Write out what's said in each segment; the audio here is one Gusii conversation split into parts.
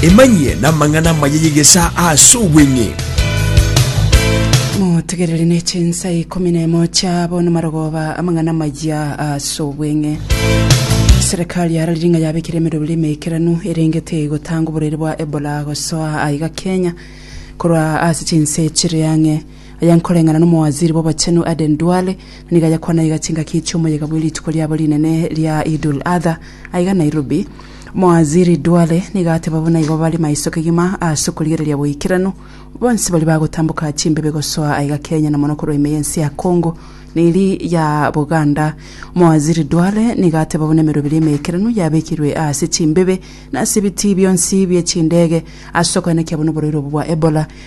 Emanyie namang'ana amaya y'egesaa ase obweng'e. Motegerere ne chinsa ikomi na emo chia bono marogoba amang'ana amaya ase obweng'e. Serikali ya Ralinga yabekire emeroberi emeikeranu erengete igotanga oborwaire bwa Ebola gosoa aiga Kenya korwa ase chinse chire ang'e. Aya nkoreng'ana n'Omowaziri bw'Obochenu Aden Duale, nigo ayakwana iga chingaki chi'omoyega bwe rituko riabo rinene ria Idul Adha aiga Nairobi. Omowaziri Duale nigo ateba buna igo bare maiso kegima ase okorigereria boikeranu bonsi baria bagotamboka chimbebe gosoa aiga Kenya na mono korwa ime y'ense ya Congo na eri ya Buganda. Omowaziri Duale nigo ateba buna emeroberi emeikeranu yabekirwe ase chimbebe na ase ebitii bionsi bie chindege ase okoenekia buna oborwaire obo bwa Ebola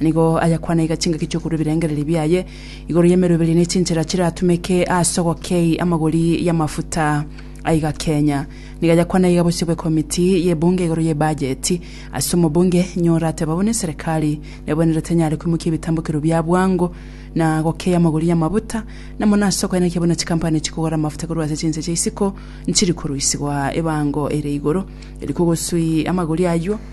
Nigo ayakwana iga chingaki chi'okorua ebirengererio biaye igoro y'emeruberia ne chinchera chiratumeke ase ogokei amagori y'amafuta aiga Kenya. Nigo ayakwana iga bosio bw'ekomiti y'ebunge igoro y'ebajeti ase omobunge nyora ateba buna eserekari nebwenerete enyare koimokia ebitambokero bia bwango na gokei amagori y'amabuta na mono ase okoenekia buna chikampani chikogora amafuta korwa ase chinse chia isiko nchiri koruisigwa ebango ere igoro eri kogosui amagori ayio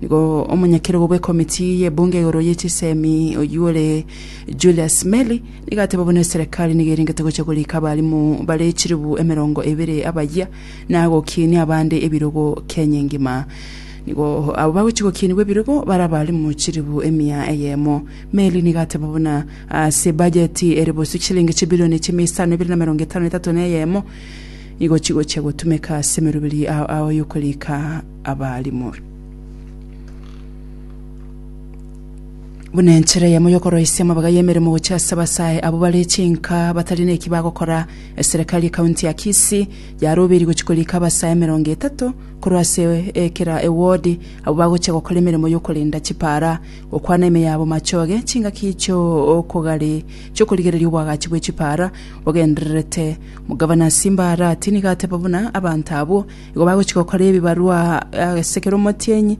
Nigo omonyakerogo bw'ekomiti y'ebunge igoro ye chisemi oyio ore Julius Meli nigo ateba buna eserekari nigo erengete gocha korika abalimu bare chilibu emerongo ebere abayia na gokinia abande ebirogo Kenya engima. Nigo abo bagochi gokienigwa ebirogo bare abalimu chilibu emia eyemo. Meli nigo ateba buna ase bajeti ere bosio chilingi chibilioni chimia isano ebere na emerongo etano na etato na eyemo nigo chigochia gotumeka ase emeroberi ao ao yokorika abarimo. Buna enchera eyemo y'okoroisia amabaga y'emeremo gochia ase abasae abwo bare chinka batari neki bagokora, eserekari ye county ya Kisii yarobeiri gochia korika abasae emerongo etato korwa ase ekera ewodi abwo bagochia gokora emeremo y'okorenda chipaara, gokwana ime yabo machoge, chingaki chi'okogari chi'okorigereria obwagachi bwe chipaara bogendererete. Omogavana Simba Arati nigo ateba buna abanto abwo Igo bagochia gokora ebibarwa ase kera omotienyi,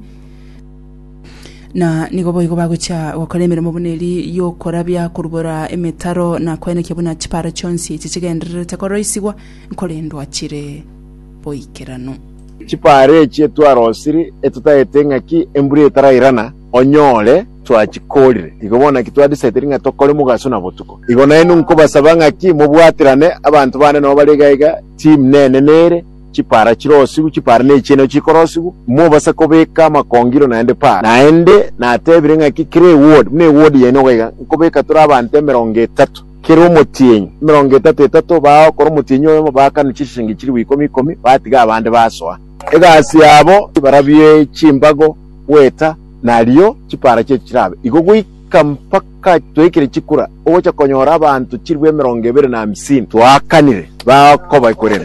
na nigo boigo bagochia gokora emeremo buna eri y'okorabia, korubora emetaro, na koenekia buna chipaaro chionsi echi chigendererete koroisigwa nkorendwa chire boikeranu. Chipaaro echi etwarosiri etotagete ng'aki embura etarairana, onyore. twachikorire. Igo bono naki twadisaidiri ng'a tokore mogaso na botuko. Igo nainwe nkobasaba ng'aki mobwaterane abanto bande nao bare iga iga, Chimnene nere, chipara chirosigwe, chipara nechiene nacho chikorosigwa, mobasa kobeka amakongiro naende paa. Naende natebire ng'aki kera ewodi, buna ewodi yaino iga iga, nkobeka tore abanto emerongo etato, kera omotienyi, emerongo etato etato, bagokora omotienyi oyomo, baakane chishiringi chilifu ikomi ikomi, batiga abande basoa. Egasi yabo, barabwo chimbago, goeta. na rirorio chipara chiaito chirabe igo goika mpaka twaikire chikura, ogocha konyora abanto chilifu emerongo ebere na hamsini. Twakanire bakobaekorera,